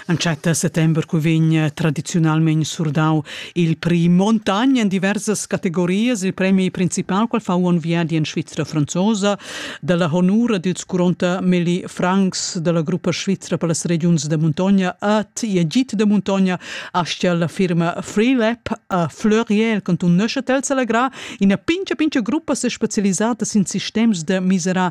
Entschatta settember cu vegn tradiziunalmein surdau il prix Montagna en diversas categorias, il premi principal qual fa un viadi en Svizra franzosa dalla honura dils curonta Meli Franks dalla gruppa svizra per las regiuns de Montagna at e git de Montagna astia la firma Freelab a Fleuriel cantun Neuchâtel selagra ina pincha pincha gruppa specialisata sin sistems de misera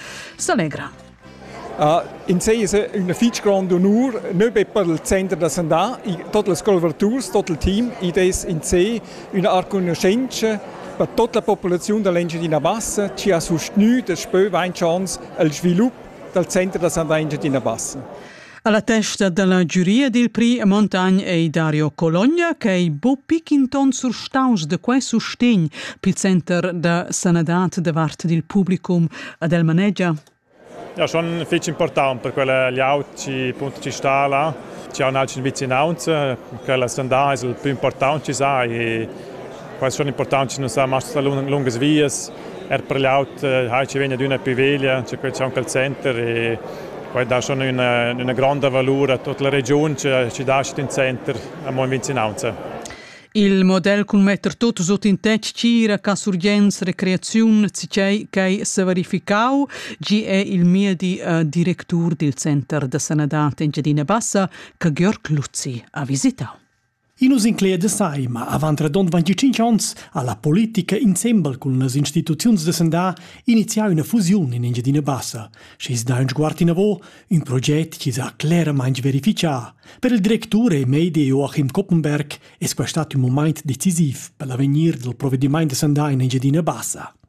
s'allegra. Uh, in sei es üna fich grand onur, nö be per il Center da sandà, tot les scolverturs, tot il team, id es in sé üna arcugnuschentscha per tot la populaziun da l'Engiadina Bassa chi ha sustgnü daspö vain chans al svilup dal Center da sandà Engiadina Bassa. Alla testa dalla giuria dil Pri Montagn ei Dario Cologna, ch'ei bu pichinton surstaus de quei sustegn pil center da sanadad da vart dil publicum ad el manegia. Ja, schon fich important per quella liaut ci punto ci sta là, ci ha un altro vicinaunz, quella sandà è il più important ci sa e Quai è impurtant che nus hajan masters lungas vias, er per l'aut hai ci vegna d'una pi veglia, c'è quel c'è anche il center e quai dà schon una, una gronda valur a tutta la regiun che ci dà in center a mo in vicinanza. Il model cun metter tot sut in tetg tgira ca surgens recreaziun cicei ch'ei severificau, gi è il miedi uh, directur dil Center da Sanadad Engiadina Bassa, ca Georg Luzzi ha visitau. I nu s'incleda sai, ma avant radond 25 ons ha la politica insembel cun las instituziuns da sandà inizià üna fusiun in Engiadina Bassa. Schi's dà ün sguard inavo, ün proget chi s'ha cleramaing verifichà. Per il directur e medi Joachim Koppenberg es quai stat ün mumaint decisiv per l'avegnir del provedimaint da sandà in Engiadina Bassa.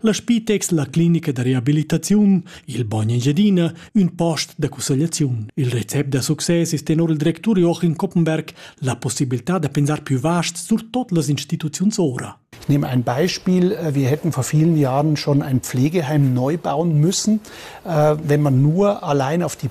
La Spitex, la clinica da reabilitaziun, il Bogn Engiadina, ün post da cussegliaziun. Il recept da success es tenor il directur Joachim Koppenberg la possibilità da pensar più vast surtot las instituziuns ora. Ich nehme ein Beispiel. Äh, wir hätten vor vielen Jahren schon ein Pflegeheim neu bauen müssen, äh, wenn man nur allein auf die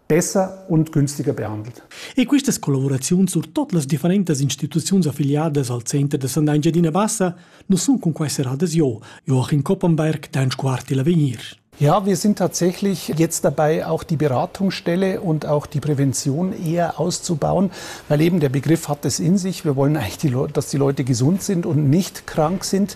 bessa und günstiger behandelt. E quistas collaboraziuns sur tot las differentas instituziuns affiliadas al Center da Sanda Engiadina Bassa nu sun cun quai serradas jo, Joachim Koppenberg, dein Quarti l'avegnir. Ja, wir sind tatsächlich jetzt dabei, auch die Beratungsstelle und auch die Prävention eher auszubauen, weil eben der Begriff hat es in sich. Wir wollen eigentlich, dass die Leute gesund sind und nicht krank sind.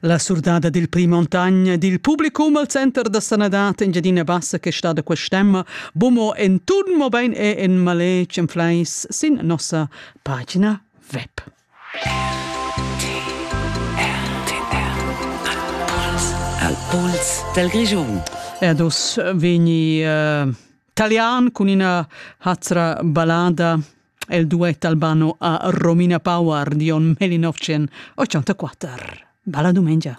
La surdada dil pli montagn dil publicum al center da sanadad Engiadina Bassa che stada quest'emma bumo en tun mobein e en maletg en fleis sin nossa pagina web. Al pols del Grischun. Erdus vegni uh, talian cun ina hazra ballada el duet albano a Romina Power, Dion 1984. Balla dumengia.